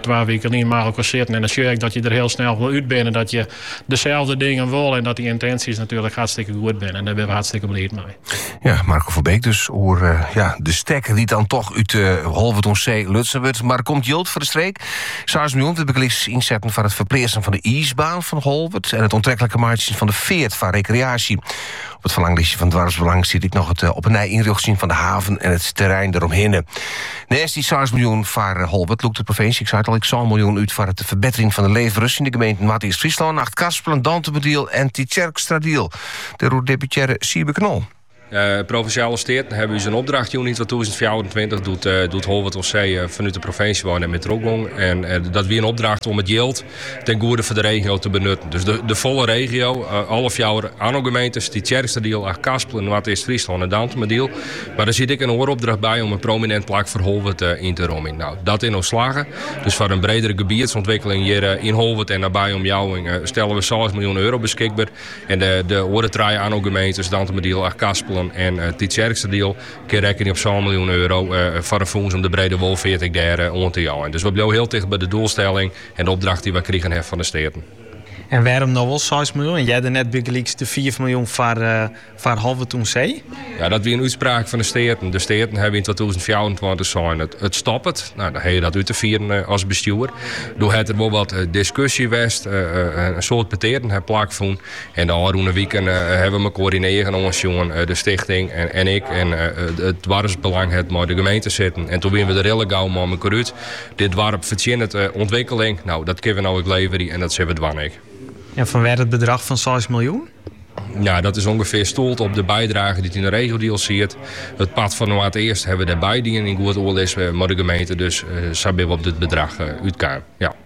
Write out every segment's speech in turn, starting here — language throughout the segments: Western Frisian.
Twa wiken lyn mei elkoar sitten en dan sjoch je ek dat je der hiel snel wol út bist, dat je deselde dingen wol en dat die yntinsjes natuerlik hartstikke goed binne. En dêr binne we hartstikke bliid mei. Ja, Marco van Beek dus oer eh, ja, de stekker die dan toch uit uh, eh, Holwert on Zee lutsen wordt. Maar komt Jolt voor de streek. Saars nu om de beglis inzetten van het verpleersen van de ijsbaan van Holwert en het onttrekkelijke maatje van de veert van recreatie. Op it ferlanglistje fan Doarpsbelang stiet ek noch it eh, op 'e nij ynrjochtsjen fan de haven en it terrein deromhinne. Nêst die 6 miljoen foar eh, Holwert lûkt de provinsje, ik sei it al, ek 6 miljoen út foar de ferbetering fan de leefberens yn de gemeenten Noardeast-Fryslân, Achtkarspelen, Dantumadiel en Tytsjerkstradiel. Dêroer deputearre Siebe Knol. Uh, Provinsjale Steaten hawwe ús in opdracht jûn yn 2024. Doe't, uh, doe't Holwert oan See uh, fanút de provinsje wei net trochgong. En dat wie in opdracht om it jild ten goede foar de regio te benutten. Dus de, de folle regio, eh, alle fjouwer Anno-gemeentes, Tytsjerksteradiel, Achtkarspelen, Noardeast-Fryslân en Dantumadiel. Mar der siet ek in oare opdracht by om in prominint plak foar Holwert eh, yn te romjen. No, dat is ús slagge. Dus foar in bredere gebietsûntwikkeling hjir eh, yn Holwert en nabij omjouwing eh, stelle we seis miljoen euro beskikber. En de, de oare trije Anno-gemeentes, Dantumadiel, Achtkarspelen en eh, Tytsjerksteradiel, Kinne rekkenje op sân miljoen euro foar in fûns om de brede wolfeart ek dêr oan te jeien. Dus we bliuwe hiel ticht by de doelstelling en de opdracht dy't we krigen ha fan de Steaten. En wêrom no wol seis miljoen en earder net bygelyks de fiif miljoen foar Holwert oan See? Ja, dat wie in útspraak fan de Steaten. De Steaten hawwe yn twatûzen fjouwerentweintich sein, it stoppet. No, dan ha je dat út te fieren as bestjoer. Doe hat der wol wat diskusje west. In soad petearten ha plakfûn. En de ôfrûne wiken hawwe we mekoar yn 'e eagen oansjoen, de stichting en ik. En it doarpsbelang hat mei de gemeente sitten. En toen wiene we der al gau mei mekoar út. Dit doarp fertsjinnet ûntwikkeling. No, dat kinne we no ek leverje en dat sille we dwaan ek. En fanwêr it bedrach fan seis miljoen? No, dat is ûngefear stuolle op de bydrage dy't yn de Regiodeal siet. It part fan Noardeast hawwe we dêr by dien yn goed oerlis mei de gemeente. Dus sa binne we op dit bedrach útkaam.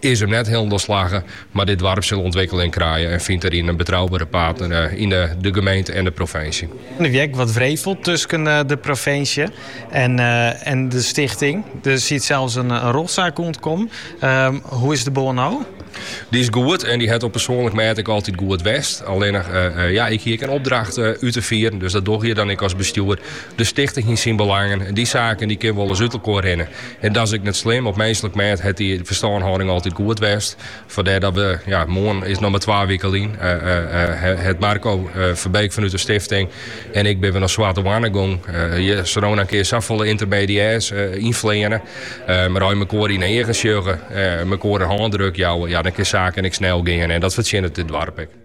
is him net hielendal slagge, mar dit doarp sil ûntwikkeling krije en fynt deryn in betroubere partner yn de gemeente en de provinsje. Der wie ek wat wrevel tusken de provinsje en de stichting. Der siet sels in rjochtsaak oan te kommen. Hoe is de bân no? Dy is goed en dy hat op persoanlik mêd ek altyd goed west. Allinnich, ja, ik hie ek in opdracht út te fieren, dus dat dogge je dan ek as bestjoer. De stichting hie syn belangen en dy saken dy kinne wolris út elkoar rinne. En dat is ek net slim. Op minslik mêd hat dy ferstânhâlding altyd goed west. Fandêr dat we, ja, moarn is noch mar twa wike lyn, hat Marco Verbeek fanút de stifting en ik binne we nei Swarte Hoanne gongen. Je kinne no ienkear safolle yntermediêrs ynfleane. Mar as je mekoar yn 'e eagen sjogge, mekoar in hândruk jouwe, ja, dan kinne saken ek snel gean en dat fertsjinnet dit doarp ek.